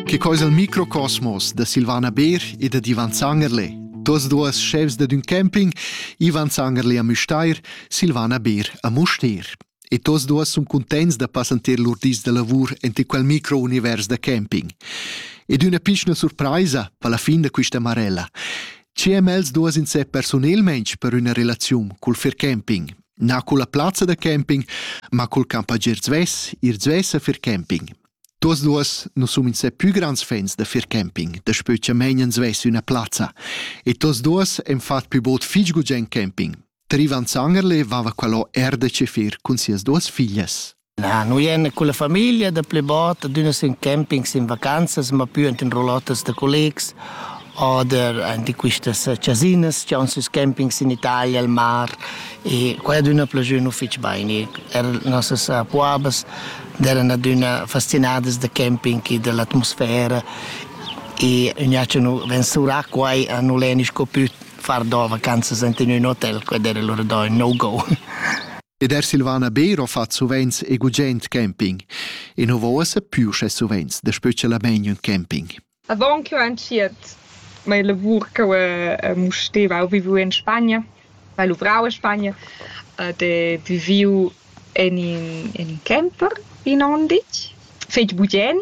Che coisa il microcosmos da Silvana Beer e da Ivan Zangerle. Dos duas chefs da un camping, Ivan Zangerle a Müstair, Silvana Beer a Mustér. E tos duas sun contents da passanter lur dis da lavur ente quel micro-univers da camping. Ed üna pichna surpraisa per la fin da quista marella. Ce am els duas in se personelmensch per üna relaziun cul fair camping? Na culla plazza da camping, ma cul campagier zvess, ir zvess a fir camping. Tuos duos nu sun insè pü grands fans da fir camping, daspö cha meinen zvess üna plazza. E tuos duos han fat pü bod fich gugent camping. Trivan Zangerle vava qualò er da ce fir cun sias duos figlias. Na, nu ien culla famiglia da plü bod, adüna sün campings, in vacanzas, ma pü ant in roulottes da collegs oder ant in quistas chasinas chi haun süs campings in Italia, al mar e quai adüna plajü nu fich bain. Er nossas puabas d'eran adüna fastinadas da camping e da l'atmosfera e gnà cha nu vensurà quai a nu l'he sco pü far do vacanzas ant in ün hotel, quel d'era lura do ün no-go. Ed er Silvana Beer ho fat suvenz e gugent camping. E nu vo uossa pü sche suvenz da specialmaing ün camping. Avant ch'eu entschiet mia lavur ch'eu mu steva, eu vivu in Spagna, hai luvrau in Spagna ed he viviu in in, in camper in on ditg, fetg bugen,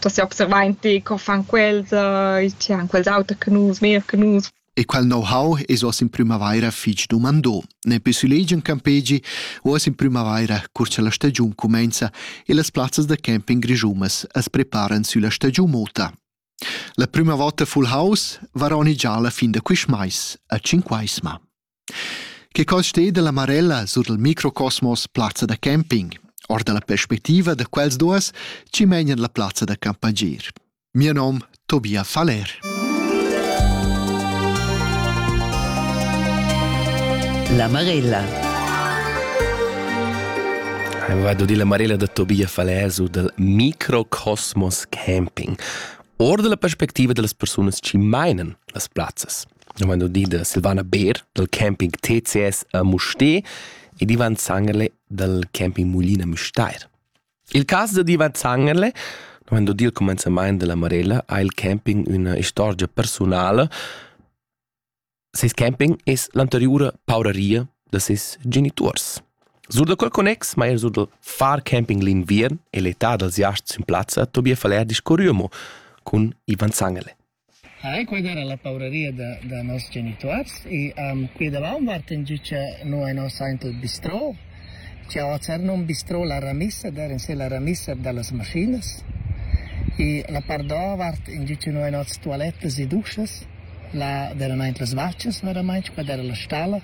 da seobservar in ti co fan quels, uh, tge han quels auter che nus, meglier che nus. E quel know-how es oss in prümavaira fich dumandò. Ne pü sulegi in campegi, oss in prümavaira, cur cha la stagiun cumenza e las plazzas da camping grischumas as preparan sülla stagiun mota. La prüma vota full house varoni già la fin da quist mais, a Cinquaisma. Che cos steda la Marella sur il microcosmos plazza da camping, or dalla perspectiva da quels duas chi menan la plazza da campagir. Mio nom Tobia Faller. La Marella. Vado di la Marella da Tobia Faller su dal microcosmos camping. Or dalla perspectiva dellas persunas chi meinen las plazzas. vegn udì da Silvana Beer dal camping TCS a Mustér ed Ivan Zangerle dal camping Mulina Müstair. Il cas da Ivan Zangerle Quando il commenzamento della Marella ha il camping una storia personale. Ses camping es l'anteriore pauraria de ses genitors. Sur da quel connex maier sur del far camping l'inviern e l'età dels iasts in plazza Tobias Faller discorriamo con Ivan Zangele. Hai, quai era la pauraria da, da noss genituors e um, qui davant Martin giü cha no è nos aint il bistrò, cha ho cernum un bistrò la ramissa, der in se la ramissa da las maschinas e la part davart in giü cha no è noss tualettas e duschas, la deramaint las vachas veramaing, quai era la stalla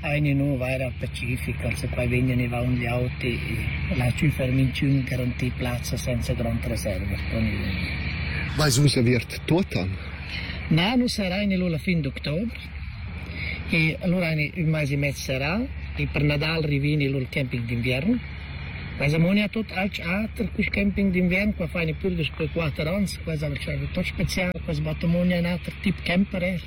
eine nuovara pacifica, se poi vegnan e vaun gli auti, la cifra minciun garanti plazza senza grand reserva con il Vais vus aviert tuotan? Na, nu sarà in la fin d'octobre. E allora un mais e mezzo sarà, e per Nadal rivini il camping d'inverno. Quasi ammonia tot alch ater quel camping d'inverno, qua fai pur dus per 4 ans, quasi al tot special, quasi battomonia un ater tip camper er.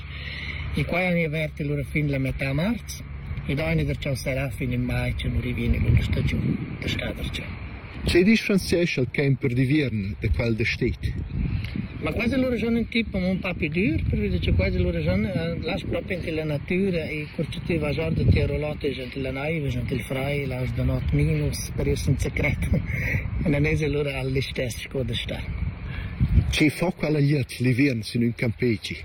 E quai han avert lura fin la metà marz ed aina gartschà serrà fin in mai che nu rivina l'üna stagiun da schadargia. Tge differenziescha il camp per di viern da quel da stet? Ma quasi lura sono un tipo un po' più dur, perché c'è quasi lura sono las proprio anche la natura e corcitiva già da Tirolotto gente la naiva, gente il frai, las da not minus, per io sono secreto. E non è lura all'istess cosa sta. Che fa quella gliet li viern sin un campeci?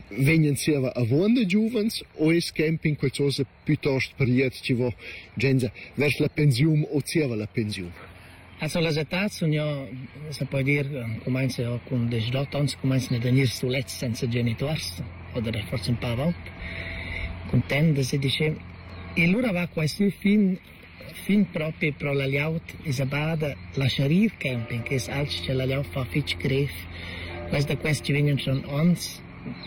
vegnan zieva avuonda giuvens o es camping qualchosa piuttost priet chi vo genza vers la pensiun o zieva la pensiun? Also las etats sun ja, se poi dir, comenza cun 18 ans, comenzan ad gnir sulets senza genituors, oder forse un pa avalt, content de se dice, e lura va quai sü fin Fin propi pro la glieud isabada la Sharif Camping es alch cha la glieud fa fich grev. Quels da quest chi vegnan schon ons,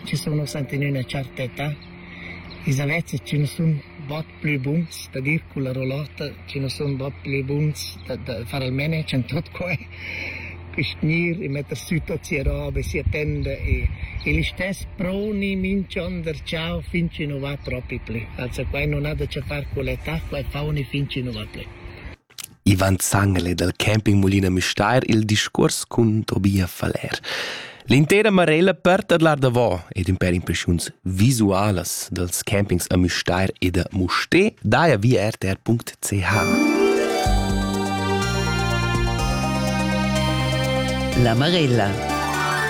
chi sun ussa in üna tscherta età, ils avezzas chi nu sun bod plü buns da dir culla rolota, chi nu sun bod plü buns da, da far almeno e tschient tuot que. gnir e metta sü tuot sia roba e sia tenda e e listess proni minch'onder ciao fin chi nu va propi plü. Also quai nun ha da che far cu l'età, quai fauni fin chi nu va plü. Ivan Zangele dal campingmulin a Müstair il discuors cun Tobia Faller. L'intera Marella per tadlar davò ed ün pèr impreschiuns visualas dals campings a Müstair e da Musté daja via rtr.ch. La Marella